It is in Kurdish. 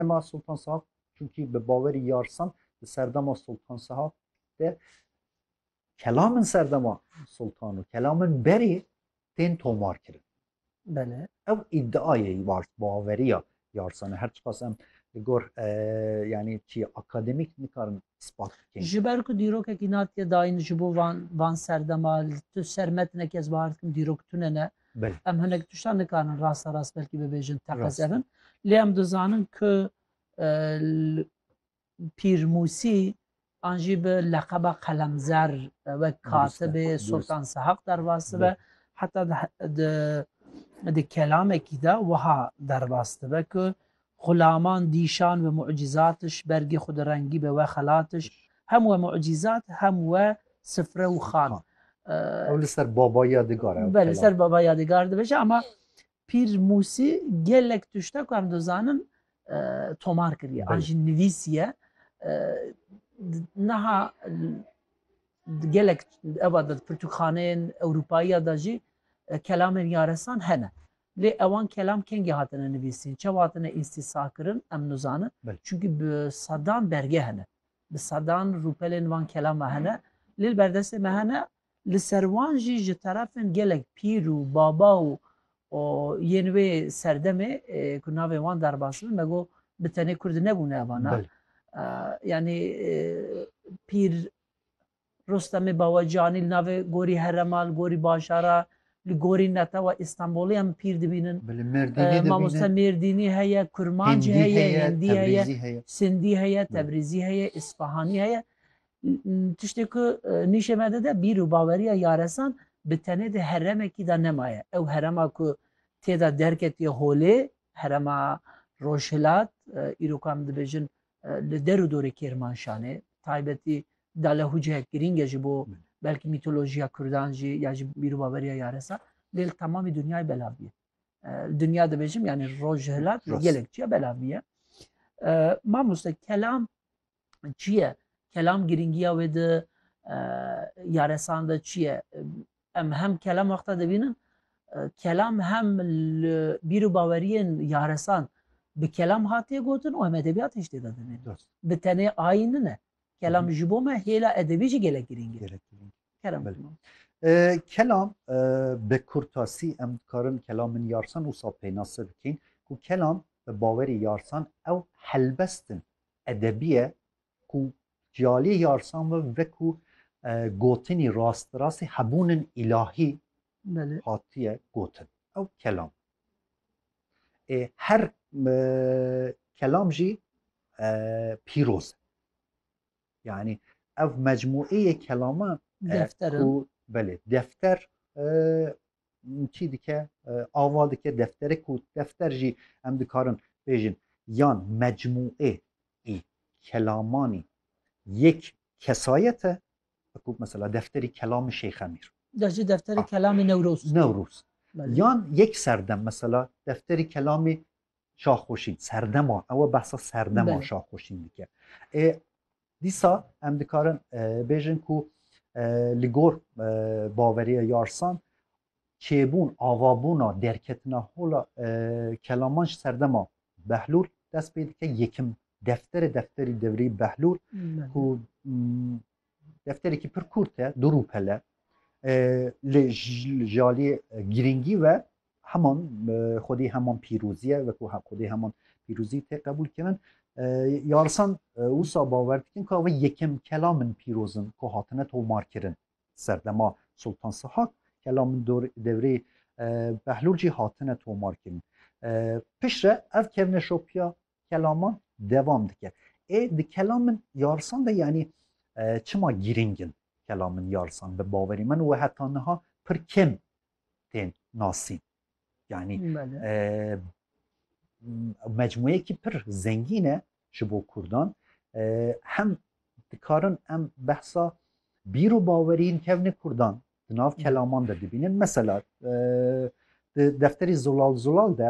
Dema Sultan Sahab çunkî bi bawerî yarsan di serdema Sultan Sahab de kelamên serdema Sultan û kelamên berê tên tomar kirin. Bele. Ew îdiayê baveriya yarsan e her çiqas em li gor e, yanî çî akademîk nikarin ispat bikin. Ji ber ku dîrokekî natiye dayîn ji bo van van serdema li tu ser metine kes bahar dikim dîrok tune ne. Belê. Em hinek tiştan nikarin rasta rast belkî bibêjin teqezerin. Lê em dizanin ku pîrmûsî an jî bi leqeba qelemzer wek katibê Sultan Sehaq derbas dibe heta di kelamekî de wiha derbas dibe ku Xulaman dîşan we mucîzatiş, bergê xu di rengî be we xelatiş, hem we mucîzat hem we sifre û xan. Ew li ser Baba Yadigar e. Be li ser Baba Yadigar dibêje ama Pîr Musî gelek tişte ku em dizanin tomar kiriye an jî nivîsiye niha gelek ewa de pirtûkxaneyên Ewropayî ya de jî kelamên yaresan hene. Lê ewan kelam kengî hatine nivîsîn, çawa hatine îstîsakirin em nizanin. Çunkî bi sedan belge hene. Bi sedan rûpelên van kelam ve hene. Lê li berdestê me hene. Li ser wan jî ji terefên gelek pîr û baba û yên wê serdemê ku navên wan derbas bin me got bi tenê Kurd nebûne evanan. Yanî pîr Rostemê Bawecanî li navê gorî herema, li gorî bajara, li gorî netewa Îstanbulê em pîr dibînin. Mamoste Mêrdînî heye, Kurmancî heye, Hindî heye, Sindî heye, Tebrîzî heye, Îsfahanî heye. Tiştê ku nîşê me dide bîr û baweriya yaresan bi tenê di heremekî de nemaye. Ew herema ku tê de derketiye holê, herema Rojhilat, îro ku em dibêjin li der û dorê Kêrmanşanê, bi taybetî dalehûceyek girîng e ji bo belkî mîtolojiya Kurdan jî ya ji bîrûbaveriya yaresa lê li temamî dinyayê belav bîye. Dinya dibêjim yanî roj ji hilat gelek çiya belav bîye. Mamoste kelam çi ye? Kelam girîngiya wê di yaresan de çi ye? Em hem kelam wexta dibînin kelam hem li bîrûbaweriyên yaresan bi kelam hatiye gotin û em edebiyat hiştê de dinê. Bi tenê ayîn nine. Kelam ji bo me hêla edebî jî gelek girîng e. Gelek girîng. Kerem Belê. Kemal. Ee, kelam e, bi kurtasî em dikarin kelamên yarsan wisa pênase bikîn ku kelam bi bawerî yarsan ew helbestin edebî ye ku ciyalî yarsan ve veku e, gotinî rastirastî hebûnin îlahî hatiye gotin ew kelam ê her kelam jî pîroz e yanî ev mecmueyê kelama ku belê defter çî dike ava dike deftere ku defter jî em dikarin bêjin yan mecmuê ê kelamanî yek kesayete wekû mesela defterî kelamî Şeyx Emîr. Ya jî defterî ah. kelamî Newroz. Newroz. Yan yek serdem mesela defterî kelamî Şaxoşîn serdema ewe behsa serdema Şaxoşîn dike. E, dîsa em dikarin e, bêjin ku e, li gor e, baveriya yarsan Çêbûn, avabûna, derketina hola kelaman ji serdema Behlûl dest pê dike. Yekim defterê defterî devrî Behlûl ku defterekî pir kurt e, du rûpele li ji aliyê girîngî ve heman xwedî heman pîrozî ye wekû xwedî heman pîrozî tê qebûl kirin. Yarisan wisa bawer dikin ku ew yekim kelam in pîroz in ku hatine tomarkirin. serdema Sultan Sihak kela min devrê Behlûl jî hatine tomarkirin. Pişre ev kevneşopiya kelaman devam dike. Ê di kelam min yarsan de yanî çima girîng in kelam min yarsan bi bawerî min û heta niha pir kêm tên nasîn. Yani mecmuyekî pir zengîn e ji bo Kurdan hem dikarin em behsa bîr û bawerîn kevnê Kurdan di nav kelaman de dibînin mesela di defterî zolal zolal de